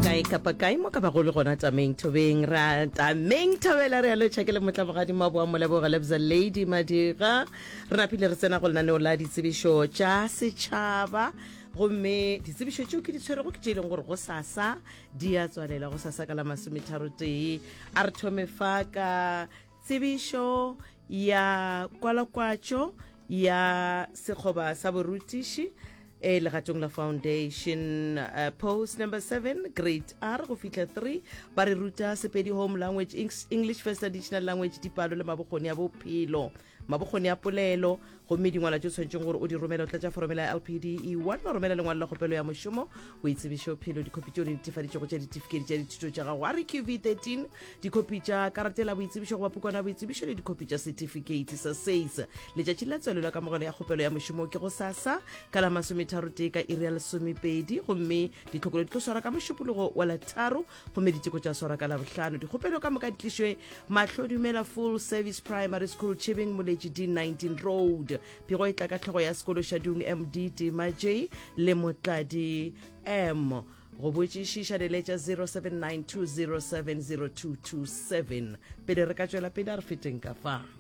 kae kapa kae mo ka bago le gona tameng thobeng ra tameng thobela re alo tšhakele motla mogadimo wa boa moleboga lebza lady madira re napile re tsena go lenaneo la ditsebišo tša setšhaba gomme ditsebišo tšeo ke di tshwerego ke tše e leng gore go sasa di a tswalela go sasa ka la masometharo tee a re thome fa ka Tsebišo ya kwalakwatšo ya sekgoba sa borutiši e legatong la foundation uh, post number 7 grade r go fihla 3 ba re ruta sepedi home language english first additional language dipalo le mabokgoni a bophelo mabokgoni a polelo Gomme dingwalwa tše o tshwanetšeng gore o di romele o tlatša foromela ya LPD E1, wa romela lengwalo la kgopelo ya mošomo, boitsebišophelo, dikhopi tše o di netefaditšego tša ditifikedi tša dithuto tša gago, REQV 13, dikhopi tša karate la boitsebišo goba pukwana ya boitsebišo le dikhopi tša setifikeiti sa SACE. Letšatši la tswalelo ya kamogelo ya kgopelo ya mošomo ke go sasa ka la masometharotee ka iri ya lesomepedi gomme ditlhokolo di tlo swarwa ka mošupologo wa la tharo gomme diteko tša swara ka labohlano dikgopelo ka moka di tlišwe mahlo dumela full service primary school chibing moletši d 19 road pego e tla ka tlhogo ya sekolo shadung md tima j le motladi m go botšišiša leletša 0792070227 pele re ka tšwela pele a re feteng ka fa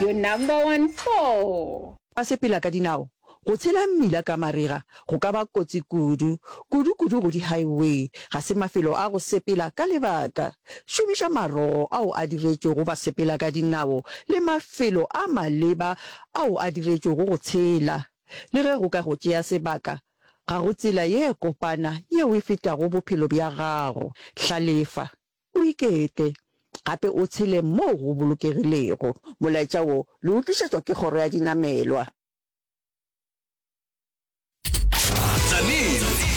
Your number one four. Ba sepela ka dinao. Go tshela mmila ka marega go ka ba kotsi kudu, kudu-kudu go di-highway. Ga se mafelo a go sepela ka lebaka. Šomiša marogo ao a diretšwego ba sepela ka dinao le mafelo a maleba ao a diretšwego go tshela. Le ge go ka go tšea sebaka, ga go tsela ye kopana yeo e fetago bophelo bja gago. Hlalefa. O ikete, gape o tshele moo go bolokegilego. Molaetša wo le o tlišetšwa ke Kgoro ya Dinamelwa. Tzaneen